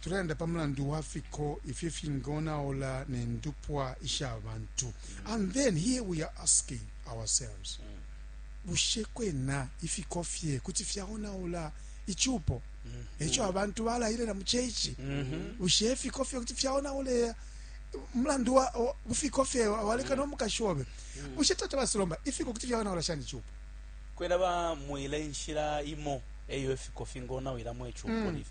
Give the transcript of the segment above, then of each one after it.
tulelanda pa mulandu wa fiko ifyo ifingonaula ne ndupwa isha bantu mm. and then here we are asking ourselves mm. bushe kwena ifiko fye kuti fyaonaula icupo mm. eco abantu balayilela mu ceici mm-hmm. bushe ifiko fye kuti fyaonaula mulandu wa ufiko fye waleka no mukashi obe mm. bushe tata basilomba ifiko kuti fyaonaula shani icupo kwena bamwile inshila imo eyo ifiko fingonawilamo icupo mm. lifi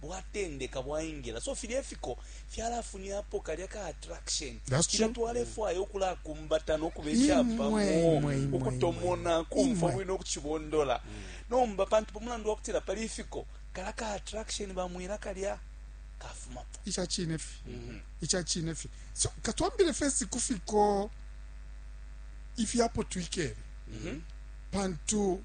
bwatendeka bwaingila so filya ifiko fyalafunyapo kalya ka attraction filya twalefwaya ukulakumbata nokuba icapamo ukutomona kumfwa bwino ukucibondola mm. nomba pantu pamulandu wakutila pali ifiko kala ka attraction bamwila kalya kafumapo icacine fi mm -hmm. icacine fi so katwambile fesi kufiko ifyapo twikele mm -hmm. pantu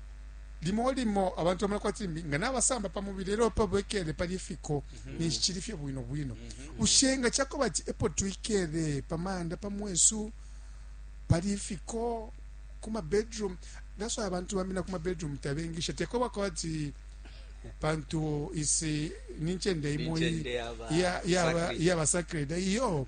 limo limo abantu bamona kwati mbi nga nabasamba pa mubili elo pa bwekele pali ifiko mhm. ninshi cili fye bwino bwino mhm. ushenga chako bati epo twikele pa manda pa mwesu pali ifiko kuma bedroom that's why abantu bamina kuma bedroom tabengisha teko bakwati pantu isi ninchende imo ya ya ya basacred iyo